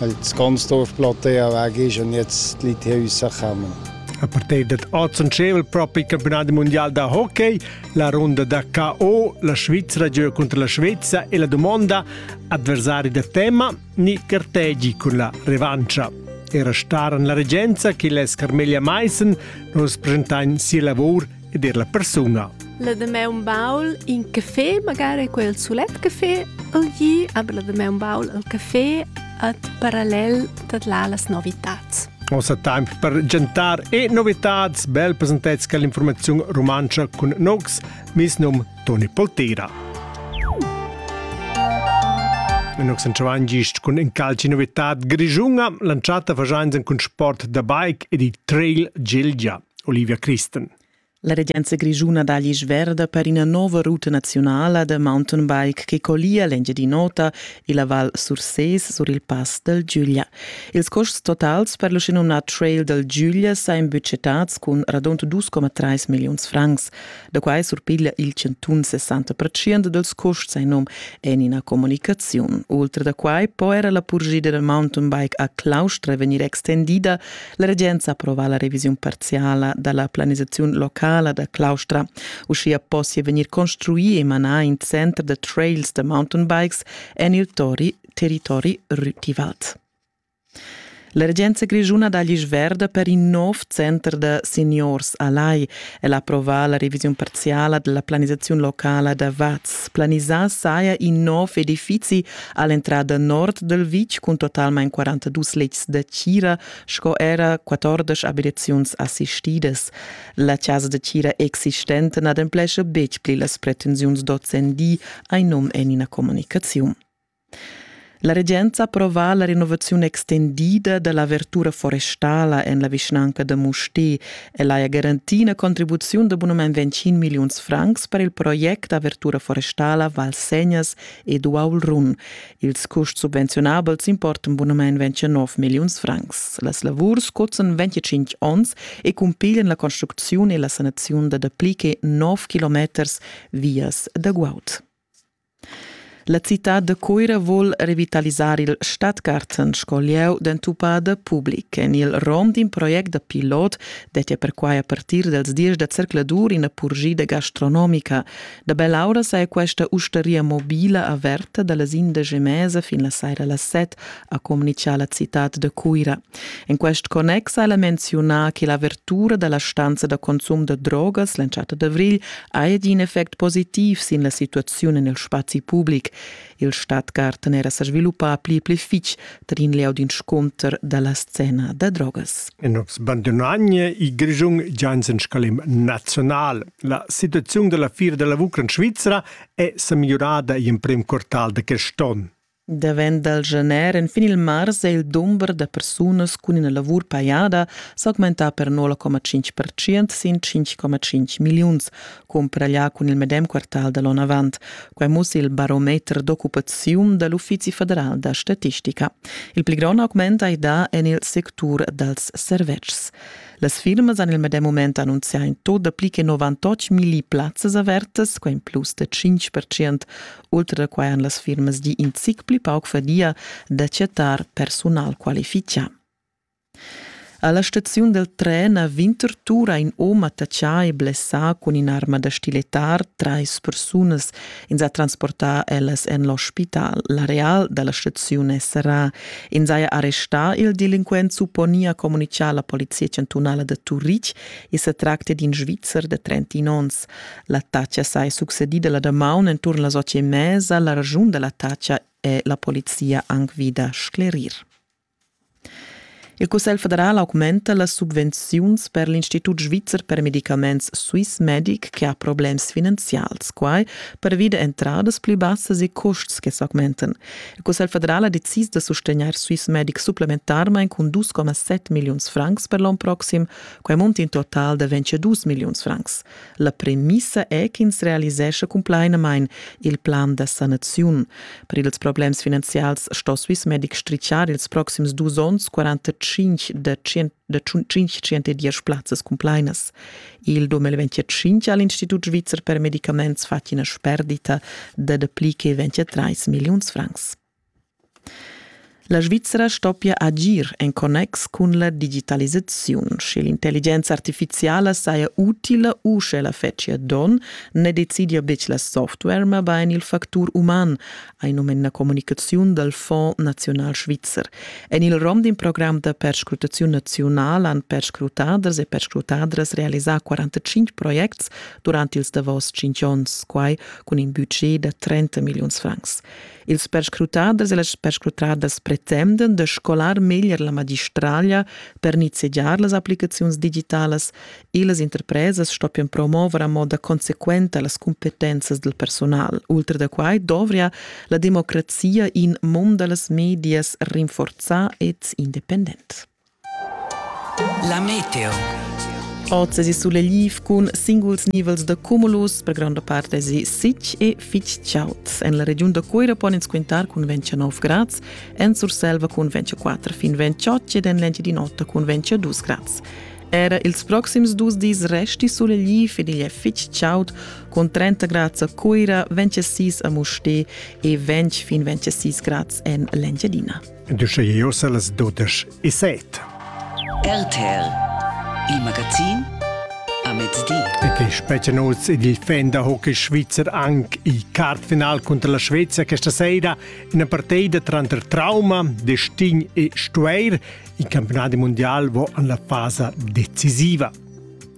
Das ganze Dorfplateau ist und jetzt liegt Häuser gekommen. A partir dad oz en schevel propi il campionat mondial da hockey, la runda da KO, la Svizzera gioca contro la Svezia e la domanda avversari da tema ni cartegi cun la revancia. Era star en la regenza che les Carmelia Meissen nos presentain sia lavor ed er la persuna. La demè un baul in café, magari quel sulet café, al gi, aber la demè un baul al café at parallel dat là las novitats. Ossa time per gentar e novitats, bel presentets che l'informazione romanza con nogs, mis num Toni Poltera. Nox en Chavan gist cun in calci novitat grigiunga, lanciata fagiains cun sport da bike ed il trail Gilgia. Olivia Christen. La regenza grischuna da Glisch Verda per ina nova ruta nazionala da mountainbike che collia l'Engiadin'Ota e la Val Surses sur il pass dal Giuglia. Ils costs totals per l'uschenumnà Trail dal Giuglia sain budgetads cun radund 2,3 milliuns francs. Da quai surpiglia il chantun 60% dals custs in num en ina comunicaziun. Oltre da quai po era la purgida dal mountain bike a Claustra vegnir extendida. La regenza approva la revisiun parziala dalla planisaziun locala da Claustra. Uschia possia vegnir construì e manà in center da trails da mountain bikes en il tori territori rutivat. L'emergenza grischuna da l'isch verda per in nov center da seniors a Lai el approvà la revisiun parziala della planisaziun locala da Vaz. Planisà saja in nov edifizi all'entrada nord del vitg cun totalmain 42 letgs da tgira sco era 14 abitaziuns assistidas. La casa da tgira existente n'ademplescha betg pli las pretensiuns d'ozendi, ein num en ina comunicaziun. La regenza approva la renovaziun extendida da l'avertura forestala en la vischnanca da Mustér. Ella ha garantì ina contribuziun da bunamain 25 milliuns francs per il project d'avertura forestala Val Segnas ed Uaul Run. Ils custs subvenziunabels importan bunamain 29 milliuns francs. Las lavurs cuzan 25 onns e cumpiglian la construcziun e la sanaziun da dapli che 9 kilometers vias da guaud. La citad da Cuira vul revitalisar il Stadtgarten sco lieu d'entupada public. En il rom d'in project da pilot dettia perquai a partir dals diesch da zercladur ina purgida gastronomica. Da bell'aura saja questa ustaria mobila averta da las indesch e mesa fin la saira las set, ha communitgà la citad da Cuira. En quest connex ha ella menziunà che l'avertura da la stanza da consum da drogas l'entschatta d'avrigl ha in effect positiv sin la situaziun en il spazi public. Il Stadtgarten era sa sviluppà pli pli fitg tar in lieu d'inscunter da la scena da drogas. En ops bandunagna il Grischun Janssen Scalim National. La situaziun da la fira della Ucrain svizra è sa migliorada in prim quartal da quest onn. Davent dal gener enfin il mars è il dumber da persunas cun ina lavur pajada s'augmentà per 0,5% sin 5,5 milliuns, cumparaglià cun il medem quartal da l'onn avant. Quai mussi il barometer d'occupaziun da l'Uffizi federal da statistica. Il pli grond augment hai dà en il sectur dals servetschs. Las firmas han il medem mument annunzià in tot da pli che 98 milli plazzas avertas, quai in plus da 5%. Ultra da quai han las firmas gì in zic pli pauc fadia da chattar personal qualifichà. Alla staziun del tren a Winterthur ha in om attachà e blessà cun in'arma da stiletar trais persunas ins ha transportà ellas en l'ospital. L'areal da la staziun è serrà. Ins haja arrestà il delinquent, supponia communitgar la polizia chantunala da Turitg. I sa tractia d'in Svizzer da 30 onns. L'attacca saja succedida la damaun enturn las otg e mezza. La ragiun da l'attacca è la polizia anc vida sclerir. Il Cussegl federal augmenta las subvenziuns per l'Institut svizzer per medicaments Swiss Medic che ha problems finanzials, quai pervi da entradas pli bassas e custs che s'augmentan. Il Cussegl federal ha decis da sustegnair Swiss Medic supplementarmain cun 2,7 milliuns francs per l'onn proxim, quai munta in total da 22 milliuns francs. La premissa è ch'ins realisescha cumplainamain il plan da sanaziun. Per ils problems finanzials sto Swissmedic strichar ils proxims dus onns 45 da 510 plazzas cumplainas. Il 2025 ha l'Institut svizzer per medicaments fatg ina sperdita da dapli che 23 milliuns francs. La Svizra stoppia agir en connex cun la digitalisaziun. Sche l'intelligenza artifiziala saja utila u sch'ella fetschia donn, ne decidia betg la software, mabain il factur uman, hai num en la communicaziun dal Fonds naziunal svizzer. En il rom d'in program da perscrutaziun naziunal han perscrutaders e perscrutadras realisà 45 projects durant ils davos 5 onns, quai cun in budget da 30 milliuns francs. Ils perscrutaders e las perscrutadas pretenden da scolar meglier la magistraglia per nizzegiar las applicaziuns digitalas e las interpresas stoppian promover a moda consequenta las cumpetenzas del personal. Ultra da quai dovria la democrazia in mund da las medias rinforzà ed independent. La meteo. Oz esi suleliv cun singuls nivels da cumulus, per gronda part esi sitg e fitg chaud. En la regiun da Cuira pon ins quintar cun 29 grads, en Surselva cun 24 fin 28 ed en l'Engiadin'Ota cun 22 grads. Era ils proxims dus dis resti suleliv ed igl è fitg chaud, cun 30 grads a Cuira, 26 a Mustér e 20 fin 26 grads en l'Engiadina. Düsche Ios las dudesch e set. RTL, il magazin a mezdi. Et è specie oz ed il fan da hockey svizzer anche il kartfinal contro la Svezia questa sera, una partita tranter trauma, destino e stuer. Il campionato mondiale va alla fase decisiva.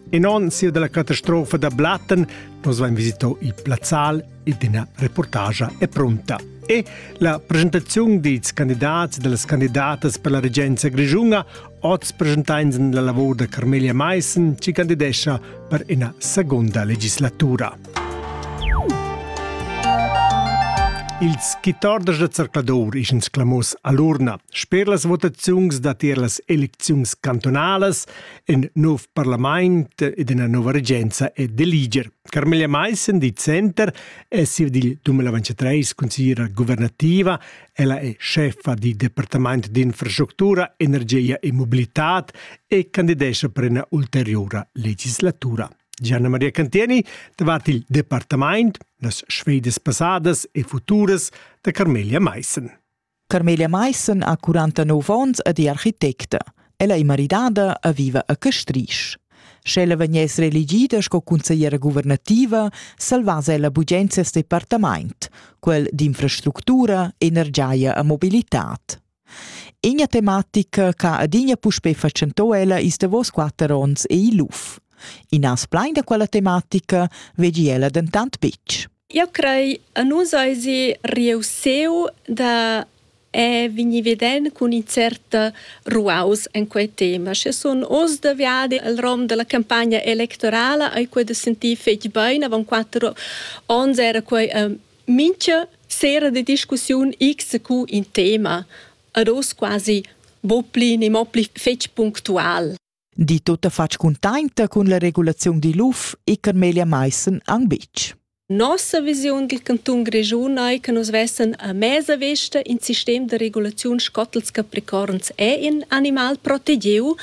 E non sia della catastrofa da Blatten, nos va in visito il plazzal L'intena reportagia è pronta. E la presentaziun dils candidats e delles candidatas per la regenza grischunga oz presentains la lavor da Carmelia Meissen, ci candidescha per ina seconda legislatura. Ils quitorders da zercladur ischens clamos all'urna. Sper las votaziuns datier las elecziuns cantonalas, in nov parlament ed ina nova regenza è d'eliger. Carmela Maissen di Center è sir dil 2023 consigliera governativa. Ella è chefa di Departament d'infrastructura, energia e mobilitad e candidescha per una ulteriora legislatura. Gianna Maria Cantieni davart il departament, las sfedas passadas e futuras da Carmelia Maissen. Carmelia Maissen ha 49 onns ed è architecta. Ella è maridada e viva a Castrisch. Sch'ella vegness reelegida sco consigliera guvernativa, salvass ella bugen ses departament, quel d'infrastructura, energia e mobilitad. Ina tematica che adina puspè fatschentò ella ils davos quatter onns è il luf. I nas plein da quella tematica vegi ella dentant betg. Jeu crei a nus eisi reussiu da eh vegnir veden cun in cert ruaus en quei tema. Sche sun oz da viadi el rom dalla campagna electorala ei quei da sentir fetg bein. Avon quatter onns era quei mintga sera de discussiun xq in tema. Ad oz quasi bo pli ni mo pli fetg punctual. di tutta fatg cuntainta cun la regulaziun digl UF e Carmelia Meissen ang bitg. Nossa visiun dil canton Grischun ei che nus vessen a mesa vesta in sistem de regulaziun scottels capricorns e in animal protegiu,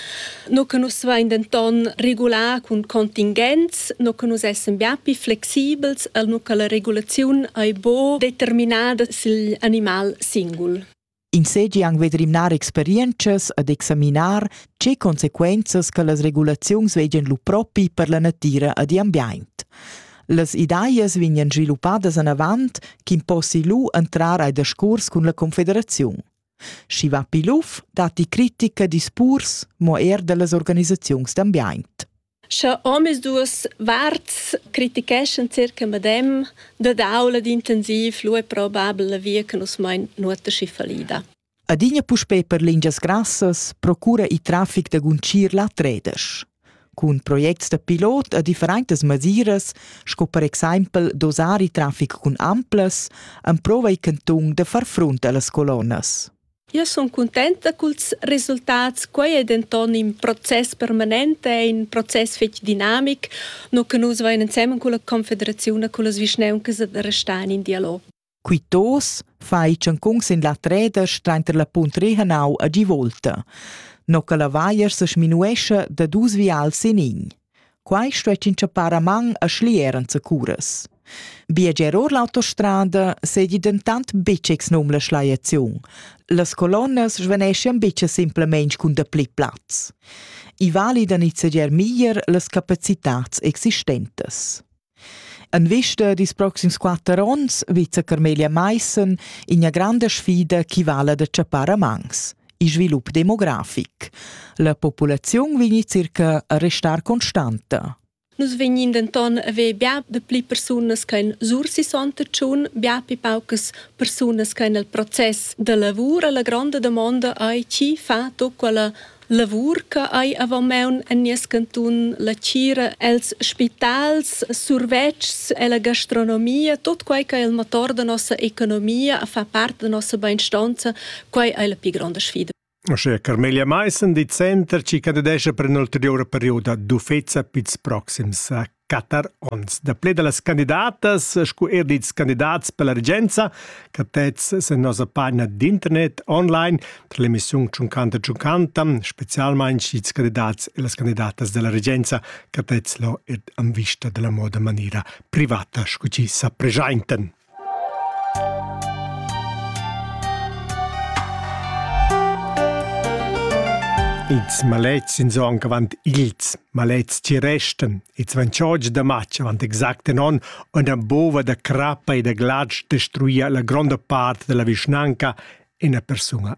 no che nus vein denton regular cun contingents, no che nus essen bia più flexibels, al no che la regulaziun ei bo determinada sil animal singul. Ins seigi aunc ved rimnar experientschas ed examinar tgei consequenzas che las regulaziuns vegien lu propi per la natira ed igl ambient. Las ideas vegnan sviluppadas anavant ch'in possi lu entrar ai discurs cun la confederaziun. Schi va Piluf datti critica discurs mo er dallas organisaziuns d'ambient. Scha omisduos varts criticheschan circa madem, dad aula d'intensiv lu è probabel la via che nus mein nuota schi fallida. Adina puspei per lingias grassas procura il traffic da guncir la tredesch. Cun projects da pilot a differentas masiras, sco per exempel dosar il traffic cun amplas, emprova il cantun da far front allas colonnas. Io sun cuntenta culs resultats. Quai è denton in process permanent, è in process fetg dinamic, no che nus vain ensemen culla Confederaziun e cullas vischnauncas da restar in dialog. Quitos fai tschancun sin la treda strainter la punt Rehanau a Givolta. No che la vaier se sminuescha da dus vials in in. Quai stuess inchappar a man a schlier enzacuras. Biager or l'autostrada seigi dentant betg exnum la schliaziun. Las colonnas svaneschan betg simplamain cun dapli plaz. I vali da nizzegiar meglier las capacitads existentas. En vista dils proxims quater onns vizza Carmelia Maissen ina granda sfida che vala da tschappar a mans il svilup demografic. La populaziun vegn circa a restar constanta. Nus vegnin denton a ver bia de pli persunas che en Sursi Sontetschun, bia pli paucas persunas che en il process de lavur. La gronda domanda ei chi fa tut quella Lavur che hai avant maun en nies cantun, la tgira els spitals, survetschs e la gastronomia, tot quei che il motor da nossa economia fa part da nossa beinstonza, quei ei la pli gronda sfida. Ossia Carmelia Meissen di Center ci candidesce per un'ulteriore periodo d'uffezza pils proxims quatter onns. Dapli da las candidatas sco er dils candidats per la regenza che tez sin nossa pagina d'internet online tra l'emissiun Tschunchanta Tschunchanta, specialmein sch'ils candidats e las candidatas della regenza che tez lo ed an vista della moda maniera privata sco ci sa presentaen. Ils malets in son avant ils malets ci resten. Ils van choggi da matg avant exact in on una bova da crappa e da glatsch destruia la gronda part della vischnanca ina persuna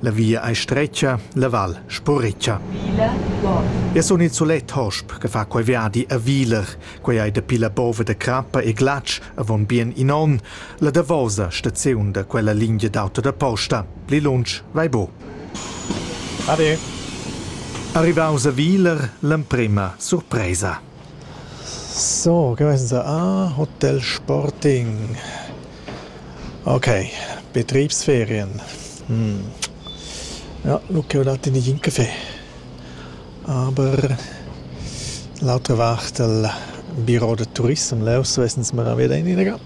La via ei stretga, la val sburritscha. Ja sun il sulet hosp che fa quei viadi a Viler. Quei ei dapi la bova da crappa e glatsch avon bien in onn la davosa staziun da quella lingia d'auto da posta. Pli lunsch vai bu. Ade. Arrivaus a Viler l'emprema surpresa. So, che vainsa? Ah, hotel sporting. Okay, Betriebsferien. Hm. Ja, nu ch'eu dat in nigliin café. Aber l'autra vart del biro da turissem leu svess'ns mara veda ininaga.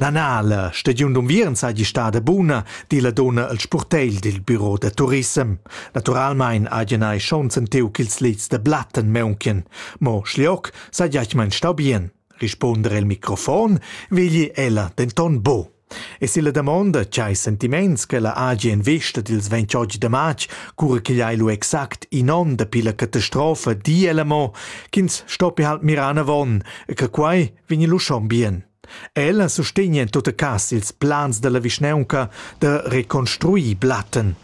Na na, la stagiun d'unviern saigi stada buna, di la donna al spurtegl dil biro da turissem. Naturalmein hagen ei schon sentiu ch'ils lits da Blatten maunchen. Mo Schliok sagiac mein stau bien, risponder el microfon, vegli ella denton bo. E si la damonda che hai sentiments che la hagi en vista dils 28 de march, cura che hai lu exact in onn dapi la catastrofa di ella mo, ch'ins stoppi halt mirar avon e che quai vegni lu schon bien. Ella sustegna en tutta cas ils plans dalla vischnaunca da reconstruir Blatten.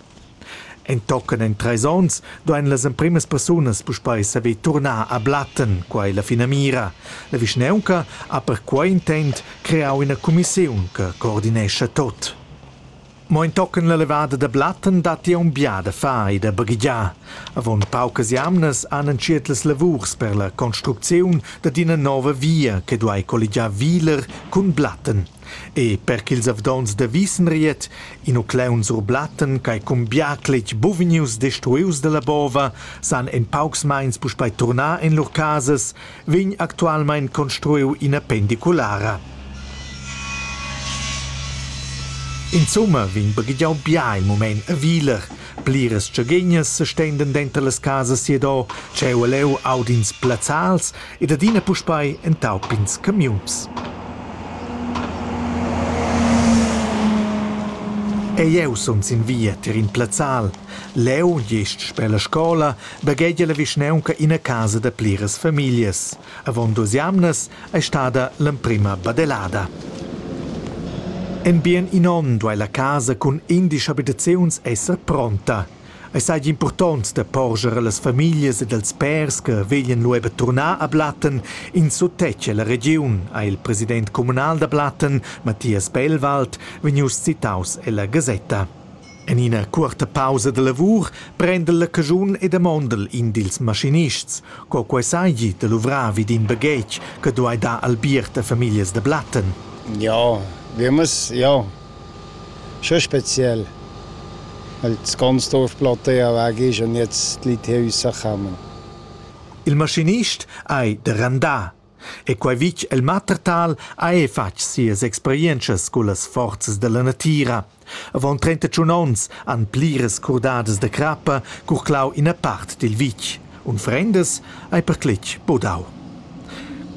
Entochen en treis onns duein las empremas persunas puspei saver turnar a Blatten, quai la finamira. La vischnaunca ha perquei intent creau ina cumissiun che coordinescha tot. Mo entochen la levada da Blatten datti aunc bia da far e da baghegiar. Avon paucas jamnas han entschiet las lavurs per la construcziun dad ina nova via che duai colligiar Wiler cun Blatten. E per ch'ils avdonts da Wisenried, in uclaun sur Blatten ch'ei cun bia cletg buvgnius destruius dalla bova, san en paucs meins puspei turnar en lur casas, vegn actualmein construiu ina pendiculara. Insomma vegn baghegiau bia il mument a Wieler. Pliras tschergegnas sestenden denter las casas siadò, tscheu e leu audins plazzals ed adina puspei entaupins camiuns. E jeu sun sin via tier in plazzal. Leu, gest sper la scola, baghegia la vischnaunca ina casa da pliras famiglias. Avon duas jamnas ei stada l'emprema badelada. En bien in onn duei la casa cun indisch abitaziuns esser pronta. Ei seigi impurtont da porscher allas famiglias ed als pèrs che veglan lu ever turnar a Blatten in suttetg ella regiun, ha il president communal da Blatten, Matthias Bellwald, vegnius citaus ella gasetta. En ina cuorta pausa da lavur prendel la caschun e damondel in dils maschinists, co quei seigi da luvrar vid in baghetg che duei dar albiert a famiglias da Blatten. Ja, Wimmes, ja. Schon speziell. Weil das ganze Dorf Platea weg ist und jetzt die Leute Häuser kommen. Il maschinist ei da randar. E quei vitg el Mattertal ha era fatg sias experientschas cullas forzas dalla natira. Avon trentatschun onns han pliras curdadas da crappa curclau ina part dil vitg. Unfrendas ei perclitg budau.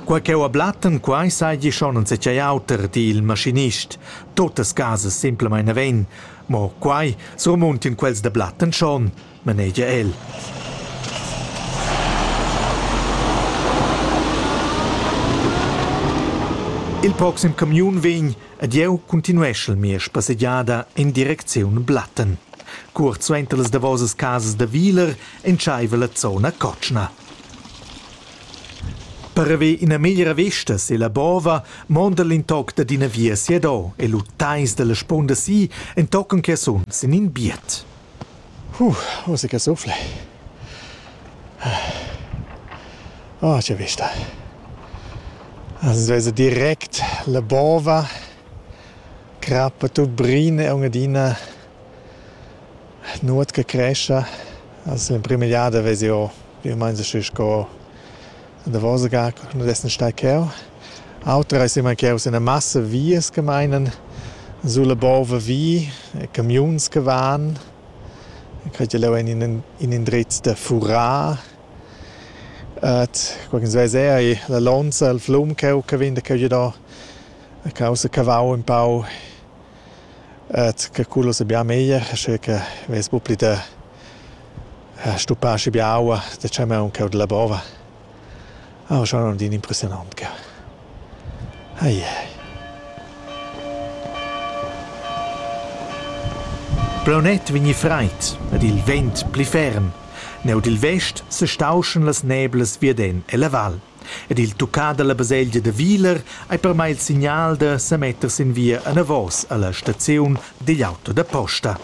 Quei cheu a Blatten, quei seigi schon enzatgei auter, di il maschinist. Totas casas semplamein naven, mo quei surmuntin quels da Blatten schon. manegia el. Il proxim camiun vegn ed jeu continueschel mia spassegiada en direcziun Blatten. Cuort suenter las davosas casas da Wieler entscheiva la zona cotschna. Per haver ina meglra vesta sella bova monda l'intoc dad ina via siadò e lu teis dalla spunda si entochen che sun sin in biet. Uh, musica che suffla. Oh, che vista. Also also direkt la bova, crappa tut brin e un'adina nuot che cresce. Also in prima giada vesi io, io mens sco davos gar nu dessen star cheu. Auter eis imma cheus üna massa vias che meinan sulla bova vi, camiuns che van. Quei leu en in in indrez da furar. Ed qualchens veis eir i la lonza, il flum cheu che vegn da cheu giu do. A causa cavau ün pau. Ed che cullas a bia meglier, sche che vess bu pli da Ha stuppà schi biaua da chamaun cheu dalla bova. Oh, schon un din impressionant cheu. Ai ai. Braunet vegni freit ed il vent pli ferm. Neu dil vest se stauschen las neblas vierden e la val. Ed il tuccà dalla baselgia de Viler ei per mai il signal da semetter sin via anavos alla staziun digl auto da posta.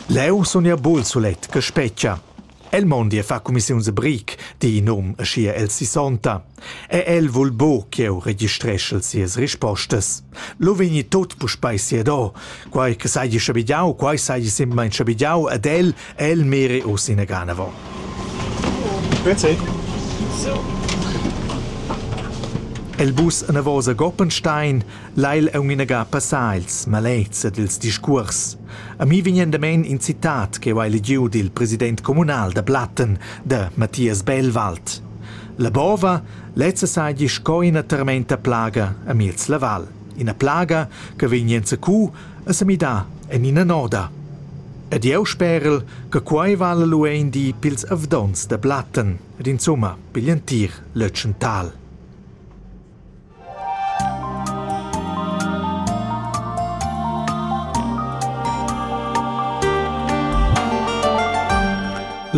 Leu sun jeu bul sulet che spetga. El mondi e fa cumissiuns e bric, di in um aschia el sissonta. E el vul buc ch'jeu registreschel sias rispostas. Lu vegni tut puspei siado. Quei che seigi schabigiau, quei seigi semplamein schabigiau ed el, el meri uss ina ganavo. Grüezi. El bus anavos a Goppenstein Lai el aunc inaga passar ils malets ed ils discuors. A mi vegnan damein in citat ch'jeu hai legiu dil president communal da Platten, da Mathias Bellwald. La bova lezza seigi sco ina termenta plaga a miez la val, ina plaga che vegn enzacu a semidar en ina noda. Ed jeu sperel che quei vala lu ein di pils avdonts da Platten ed insumma pigl entir Lötschental.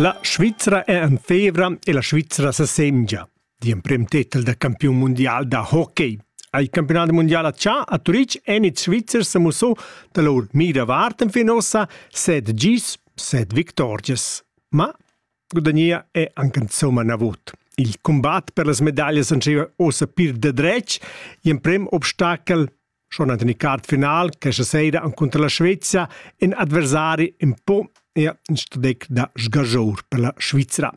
La Svizra è en fevra e la Svizra sa semgia, di emprem titel da campiun mundial da hockey. Al campionat mundial a Cha a Turitg èn ils Svizzers sa mussò da lur mira vart fin ossa set gis, set victorgias. Ma Gudagnea è anche insomma navot. Il combat per las medaglias entscheiva ossa pir de dretg. Gl'emprem obstacel schon an den card final questa sera contro la Svezia in adversari un po e in stadec da sgagior per la Svizzera.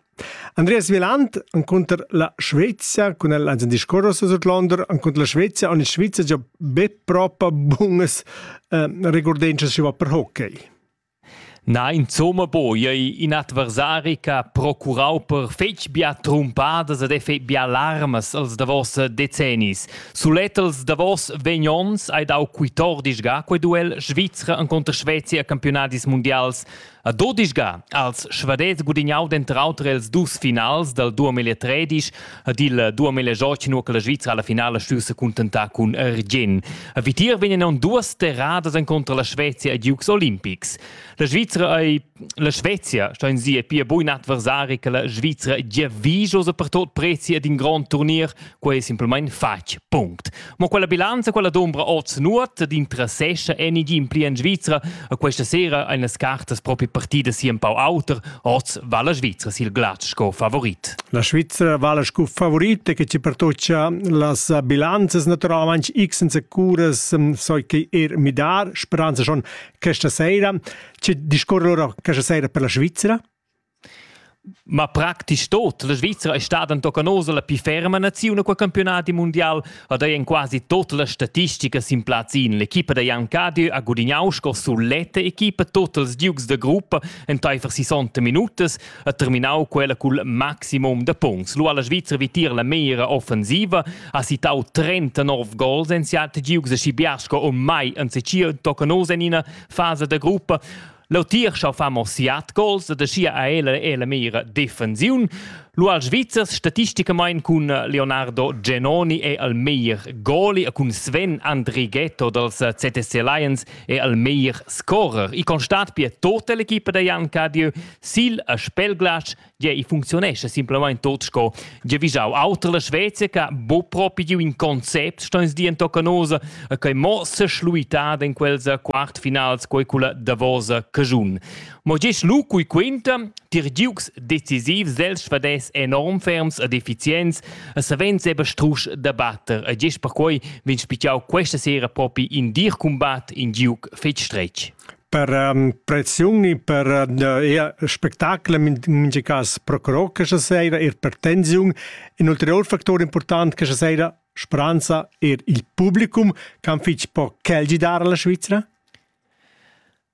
Andreas Wieland contro la Svezia con el ein discorros sut Londra contro la Svezia und in Svizzera già be propa bunas eh, recordenze si va per hockey. Na insumma po ei in adversari che ha procurau per fetg bia trumpadas ed effect bia larmas els davos decennis. Sulet els davos vegn onns hai dau quitordisga quei duel Svizra encunter Svezia a campionadis mundials. A dodisga als Svadets gudignau denter auter els dus finals dal 2013 Ad il 2018 nu che la Svizra alla finale stüva se contentà cun Argin. A Vitir vegnan duas terradas incontra la Svezia e Dukes Olympics. La Svizra ei la Svezia sta in sie pia bun adversari che la Svizra gia viso per tot prezi ad in grand turnier, quei è simpelmente fatg. Punkt. Mo quella bilanza, quella dombra oz nuot d'interessescha en igin pli en Svizra. A questa sera ein las cartas propri partida si un pau auter. Oz va la Svizra sil glatsch sco favorit. La Svizra vala sco favorit e che ci pertoccia las bilanzas naturalmente x senza curas so che er midar speranza schon questa sera. Ci discorre ora questa sera per la Svizzera? Ma practisch tot. La Svizra è stada entochen oz la pli ferma naziun qua campiunadi mundial ed ei en quasi tut las statisticas sin plaz in. L'equipa da Jan Cadieu ha gudignau sco suletta equipa tot els giugs da gruppa enteifer 60 minutas e terminau quella cul maximum da punts. Lu ha la Svizra vitir la meira offensiva, ha citau 39 gols en siat giugs e schi biars sco mai ensecia entochen oz en ina fasa da gruppa. L'autir schau fa mo siat gols ed aschia ha el e la mira defensiun. Lu al Svizzers statisticamain cun Leonardo Genoni è al meglier goli e cun Sven Andrighetto dals CTC Lions è al meglier scorer. I constat pia tota l'equipa da Jan Cadieu sil a Spelglatsch Gie, i funcziunescha simplamain tot sco giavischau. Auter la Svezia che bo propi giu in concept stoins di en tocca nosa e che mo se schluitat in quels quartfinals quei culla davosa cagiun. Mo gis lu cui quinta, tir giugs decisivs els schvades enorm ferms ed effizients e savens eba strusch da batter e gis per quei vegn spichiau questa sera propi in dir combat in giug fetg stretg. per um, pressioni per uh, spectacle in mingi cas pro cro che sera ir per tensiun in ulterior factor important che sera speranza er il publicum can fitch po celgidare la Svizzera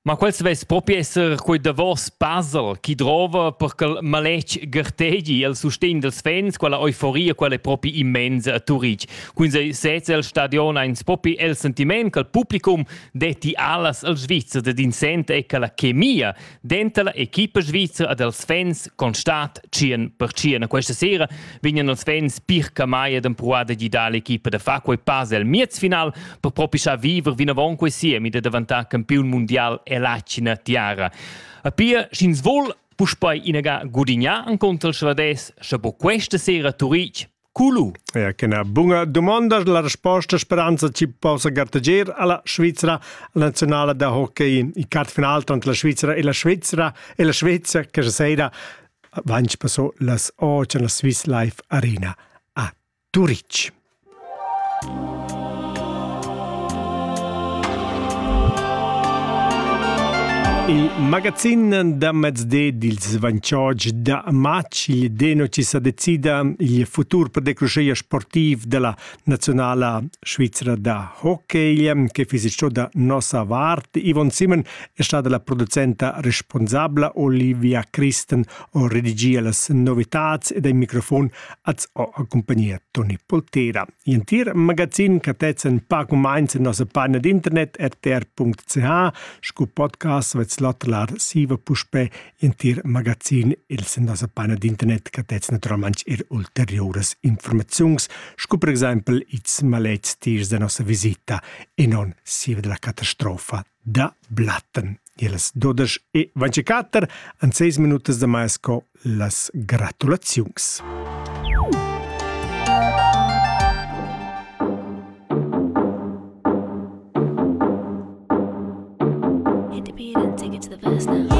Ma quel svess propi esser quei davos puzzle chi drova per quel maletg gartegi el sustegn dels fans, quella euforia quella è propi immensa a Turitg. Quindi sez el stadion eins propi el sentiment che il publicum detti alas al Svizzer ed in sent è che la chemia denta la equipa svizra ed els fans constat 100%. Questa sera vegnan els fans Pirca Mai ed empruar da gidar l'equipa da far quei pass al miezfinal per propischar viver vinavon quei siemi da daventare campiun mondial e lacina tiara. A pia, sch'ins vuol puspei inaga gudignar an contra il Svades, sche bo questa sera Turitg Culu. Ja, che na bunga domanda la risposta speranza ci possa garteger alla Svizzera nazionale da hockey in kartfinal tra la Svizzera e la Svizzera e la Svezia che se sera vanci passo las 8 la Swiss Life Arena a Turic. Il magazin da mezdi dils Vanchoge da matg il Denoci sa decida il futur per decruscheia sportiv della nazionala svizra da hockey che fisi ciò da nossa vart. Ivon Simon è stata la producenta responsabla, Olivia Christen o redigia las novitats ed ai microfon az ho accompagnia Toni Poltera. L'entir magazin catezzen pac u meins en nossa pagina d'internet rtr.ch sco podcast vets latelar siva puspè l'entir magazin els en nossa pagina d'internet catezzen naturalmain er ulteriuras informaziuns sco per exempel ils maletgs tiers da nossa visita e non siva della catastrofa da Blatten. Illas dudesch e ventiquatter han seis minutas da mais co las gratulaziuns. Independent tickets the verse now.